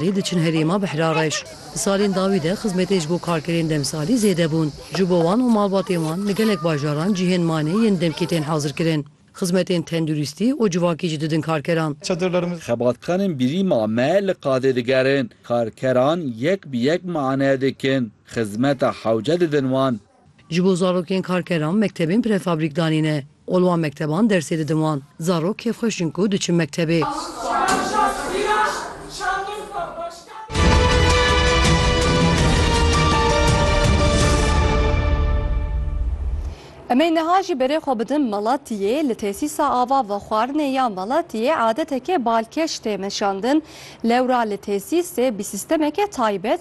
Lê diçin herêma Behrareş. Di salên dawî de xizmetê ji bo karkerên demsalî zêde bûn. Ji bo wan û malbatên wan li gelek bajaran cihên manê yên demkî tên hazirkirin. Xizmetên tenduristî û civakî jî didin karkeran. Xebatxanên birîma me li qadê digerin. Karkeran yek bi yek mane dikin. Xizmeta hewce didin wan. Ji bo zarokên karkeran mektebên prefabrik danîne û li wan mekteban dersê didin wan. Zarok kêfxweş in ku diçin mektebê. Em ê niha jî berê xwe bidin Malatiyê. Li Tesîsa Ava Vexwarinê ya Malatiyê adeteke balkêş tê meşandin. Lewra li tesîsê bi sîstemeke taybet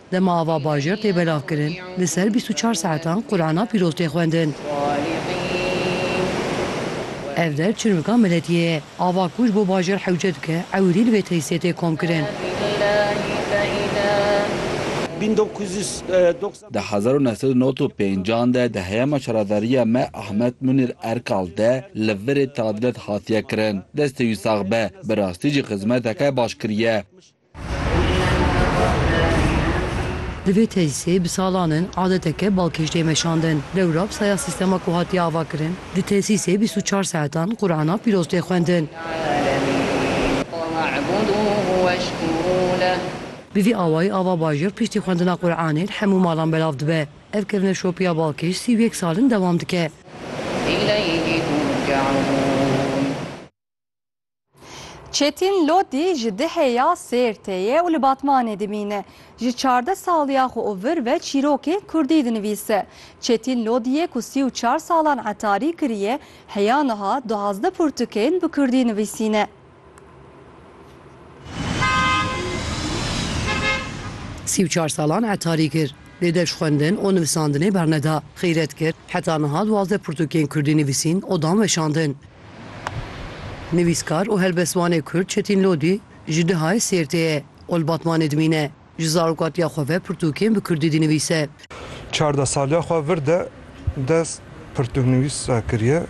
Dema ava bajêr tê belavkirin, li ser bîst û çar saetan Qur'ana pîroz tê xwendin. Ev der çirmika miletiyê ye. Ava ku ji bo bajêr hewce dike, ewilî li vê tesîsê tê komkirin. Di hezar û neh sed û nod û pênc an de di heyama şaradariya me Ahmet Munir Erkal de li virê tadilat hatiye kirin. Destê wî sax be, bi rastî jî xizmeteke baş kiriye. Di vê tesîsê bi salan in adeteke balkêş tê meşandin. Dewra bi saya sîstema ku hatiye avakirin, di tesîsê bîst û çar saetan Qur'ana pîroz tê xwendin. Bi vî awayî ava bajêr piştî xwendina Qur'anê li hemû malan belav dibe. Ev kevneşopiya balkêş sî û yek sal in dewam dike. Çetîn Lodî ji Dihê ya Sêrtê ye û li Batmanê dimîne. Ji çardeh saliya xwe û vir ve çîrokên Kurdî dinivîse. Çetîn Lodîyê ku sî û çar salan etarî kiriye, heya niha duwazdeh pirtûkên bi Kurdî nivîsîne. Sî û çar salan etarî kir. Lê deş xwendin û nivisandinê berneda. Xîret kir, heta niha duwazdeh pirtûkên Kurdî nivîsîn û dan weşandin. Nivîskar û helbestvanê Kurd Çetîn Lodî ji Dihayê Sêrtê ye û li Batmanê dimîne. Ji zarokatiya xwe ve pirtûkên bi Kurdî dinivîse. Çardeh saliya xwe vir de dest pirtûknivîsa kiriye.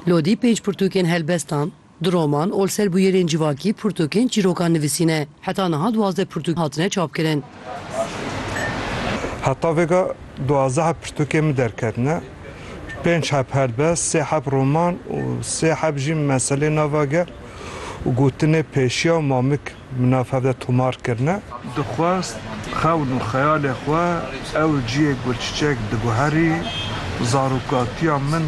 Lodî pênc pirtûkên helbestan Di roman ol ser bûyerên civakî pirtûkên çîrokan nivîsîne. Heta niha duwazdeh pirtûk hatine çapkirin. Heta vêga duwazdeh pirtûkên min derketine. Pênc heb helbest, sê heb roman û sê heb jî meselê nava gel û gotinê pêşiya û mamik. Min nav hev de tomar kirine. Dixwest xewn û xeyalê xwe ew ciyê gulçiçek diguherî, zarokatiya min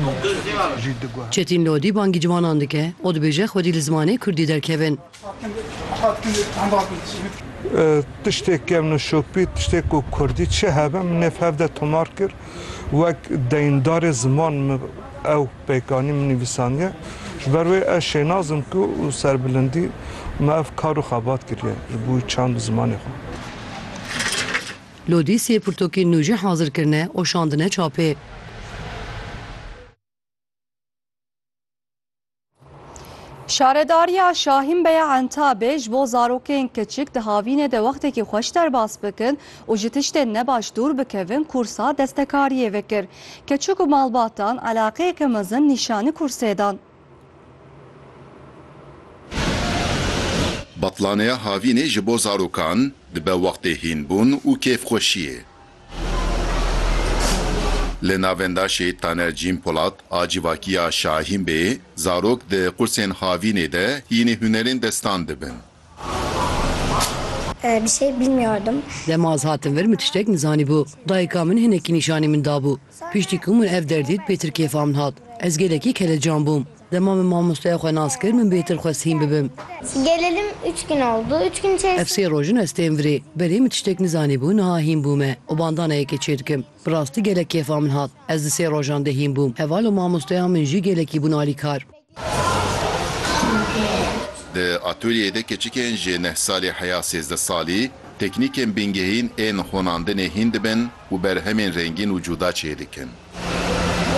jî diguherî. Çetîn Lodî bangî ciwanan dike û dibêje xwedî li zimanê kurdî derkevin. Tiştê kevno şopî, tiştê ku kurdî çi hebe, min nêv hev de tomar kir. Wek deyndarê ziman min ew. Pêkanî min nivîsandiye. Ji ber wê ez şênaz im ku û serbilindî me ev kar û xebat kiriye ji bo çand û zimanê xwe. Lodî sê pirtokên nû jî hazir kirine û şandine çapê. Şaredariya Şahînbeya Entabê ji bo zarokên kiçik di havînê de wextekî xweş derbas bikin û ji tiştên nebaş dûr bikevin kûrsa destekariyê vekir. Keçik û malbatan eleqeyeke mezin nîşanî kûrsê dan. Betlaneya havînê ji bo zarokan dibe wextê hînbûn û kêfxweşiyê. Li navendaşê Taner Cîn Polat a civakîya Şahîn Bê, zarok di qursên havînê de hînî hunerên destan dibin. Bir şey bilmiyordum. Dema ez hatim vir min tiştek nizanîbû. Dayika min hinekî nîşanî min dabû. Piştî ku min ev der dît pêtir kêfa min hat. Ez gelekî kelecan bûm. Dema min mamosteya xwe nas kir min bêtir xwest hîn bibim. Gelelim üç gün oldu. Üç gün içerisinde. Ev sê roj in ez tên virê. Belê min tiştek nizanîbû niha hîn bûme û bandana yekê çêdikim. Bi rastî gelek kêfa min hat. Ez di sê rojan de hîn bûm. Heval û mamosteya min jî gelekî bûn alîkar. Di atolyeyê de keçikên ji neh salî heya sêzdeh salî teknîkên bingehîn ên xonandinê hîn dibin û berhemên rengîn û cuda çêdikin.